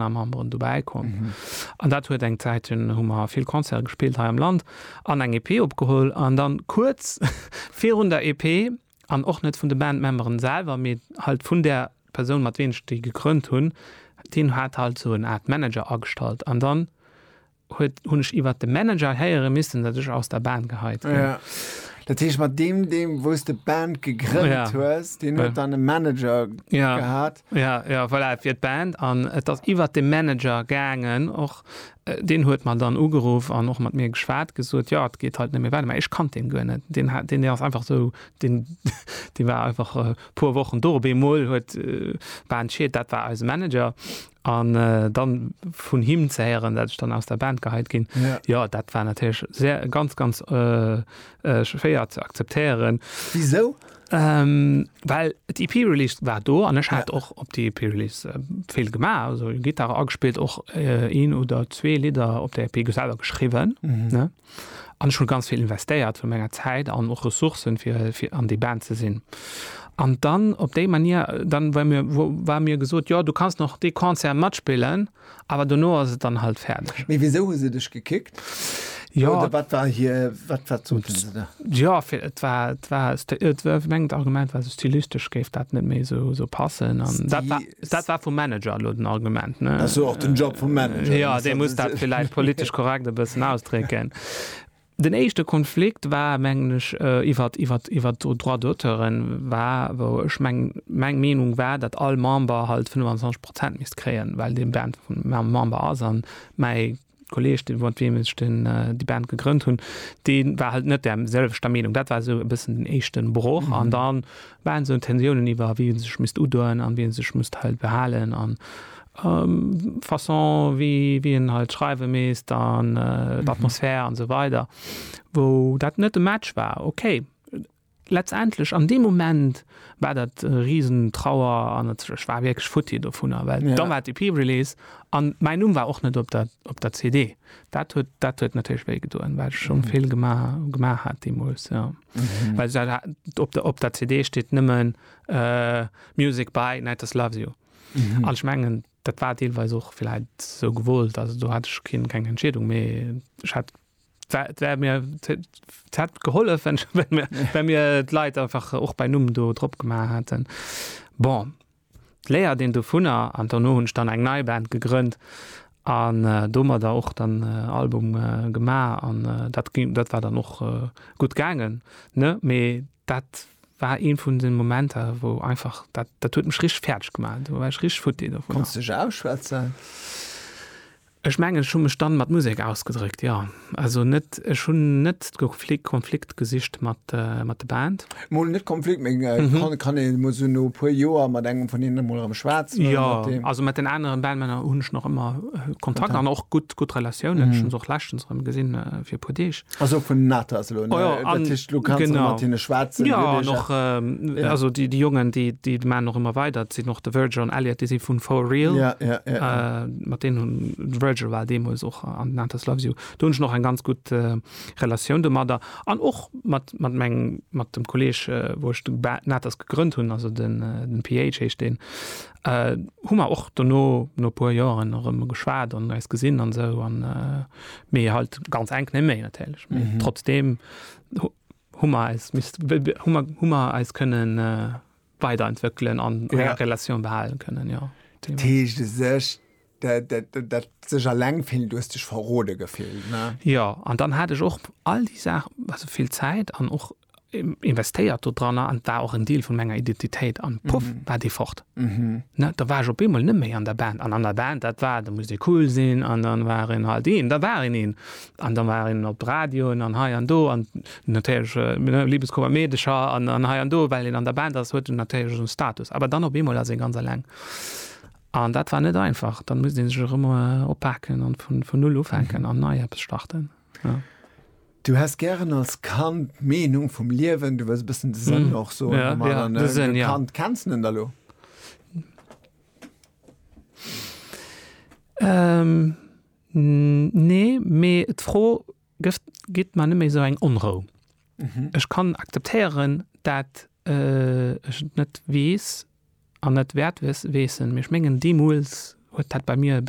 Partner Memberen dobäi komm mhm. an dat huet eng Zäit hun hu mer vill Konzer gespielt hei am Land an eng EP opgeholl an dann kurz vir hun der EP an och net vun de Bandmemberen selber mit halt vun der Person mat ween ste gekrönnt hunn, den hat halt so en Art Manager astallt an dann huet, hunn ech iwwert de Manager héiere missen, datt ech aus der Band geheit ginn. Ja. Dat heescht, mat deem, deem wou s de d'Band gegrënnt Ja. hues, deen huet dann e Manager Ja. gehat. Ja, ja, voilà, et wier d'Band an et ass iwwert de Manager gaangen och. Deen huet mer dann ugeruff an och mat mir geschwat, gesot, jo, et geet halt net méi weider. Mä ech kannt deen guer net. Deen hat, deen ass einfach esou, deen, dee war einfach e puer Wochen do. Op eemol huet d'Band Shit, dat war eise Manager. An dann vun him ze héieren, dat ech dann aus der Band geheit gin, jo dat war natierlech sehr ganz ganz schwéier ze akzeptéieren. Wisou? Well d'EP Release war do an ech hat och op der EP Release vill gemaach, also Gittare agespillt, och een oder zwee Lidder op der EP selwer geschriwwen. An ech hunn ganz vill investéiert vun menger Zäit an och Ressourcen fir fir an déi Band ze sinn. An dann op déi Manier dann war mir war mir gesot jo du kanns nach dee Concert matspillen awer dono ass et dann halt fäerdeg. Mee wisou hu se dech gekickt? Jo. Oder wat war hir wat wat soten se da? Jo fir et war et war et war mengt Argument war esou stylistesch géif dat net méi esou esou passen an dat war. Dat war vum Manager elo den Argument, ne? Ach sou, och den Job vum Manager. Jo, dee muss dat villäicht politesch korrekt e bëssen ausdrécken. Den éischte Konflikt war, mengen ech, iwwert, iwwert, iwwert d'Droits d'auteuren war, wou ech meng, meng Meenung war, datt all Member halt 25 Prozent misst kréien, well dee Band vum Member ass a mäi Kolleg, de mat weem ech den, déi Band gegrënnt hunn, dee war halt net där selwechter Meenung. Dat war esou e bëssen den éischten Broch. An da waren esou Tensiounen iwwer, wien sech misst udoen an wien sech misst halt behalen an d'Façon, wéi, wéi een halt schreiwe misst an d'Atmosphär an esou weider, wou dat net e Match war. Okay, Letztendlech an deem Moment war dat e riesen Trauer an ech war wierklech futti dovunner, well da war d'EP-Release an mäin Numm war och net op der op der CD. Dat huet dat huet natierlech wéi gedoen, well ech schonn vill gemaach gemaach hat deemools, jo. Well dat hat op der op der CD steet nëmmen Music by Nighters Loves You an ech mengen dat war deelweis och villäit sou gewollt, also do hat ech keen keng Entscheedung, mee ech hat D'wär mir, d'hätt gehollef, wenn, wenn mir, wenn mir d'Leit einfach och bei Numm do drop gemaach hätten. Bon, d'Léiert een dovunner an dono hunn ech dann eng nei Band gegrënnt an äh, domadder och dann äh, Album äh, gemaach an äh, dat ging, dat war dann och äh, gutt gaangen, ne? Mee dat war een vun den Momenter, wou einfach dat, dat huet mech richteg fäerdeg gemaach. Do war ech richteg futti dovunner. Kanns dech ausschwätzen? Ech mengen ech hu mech dann mat Musek ausgedréckt, jo. Also net, ech hunn net de Konflikt gesicht mat de Band. Mol net Konflikt, mee kann een mol sou no e puer Joer mat engem vun hinnen mol erëm schwätzen? Jo, also mat den aneren Bandmänner hunn ech nach ëmmer Kontakt an och gutt Relatiounen. Ech hunn se och leschtens erëm gesinn fir e puer Deeg. Also vun Natas lo, ne? Oh ja, an- Dat heescht, lo kannst du genau. mat hinne schwätzen, Ja, Lübeck, an och ähm, Ja. also déi déi Jongen, déi déi man och ëmmer weider, sinn och de Virgil an Elliot, déi si vun For Real. Ja, ja, ja. ja. Äh, mat denen hun de Virgil war deemols och an Nantes Loves You. Do hunn ech noch eng ganz gut äh, Relatioun domadder. An och mat, mat, meng, mat dem Kolleg, äh, wou ech de Ba- Nantes gegrënnt hunn, also den, äh, den PH heescht den, äh, hu mer och dono no puer Joren erëm geschwat an eis gesinn an sou an äh, Mee halt ganz enk ne méi natierlech. Mm -hmm. Trotzdem Hummer als Mist Hummer Hummer als kënnen äh, weiterentwickeln an ja. Relation behalen kënnen ja. Teescht sech dat, dat, dat sech alleng vill dues dech verrode gefillt. Ne? Ja an dann hat ech och all die Saach also vill Zäit an och investéiert do dranner an war och en Deel vun menger Identitéit an puff mhm. war dee fort. Mhm. Ne, da war ech op eemol net méi an der Band an an der Band dat war, da muss dee cool sinn an dann war en halt een, da war en een an da war en op Radioen an hei an do an natierlech äh, ne, Liebeskummer Meedecher an an hei an do, well en an der Band ass huet en natierlech un Status, awer dann op eemol ass en ganz alleng. An dat war net einfach, dann muss een sech erëm äh, oppaken an vun vun null ufänken an nei Apps starten. Ja. Du häss gären als Kand d'Meenung vum Liewen, du wëlls e bëssen de Sënn och soen vum Allem. Als Kand kenns de en da lo? Nee, mee d'Fro gitt mer net méi esou eng Onrou. Ech kann akzeptéieren, dat ech et net weess an net wäert weessen, mee ech mengen deemools huet dat bei mir e bëssen.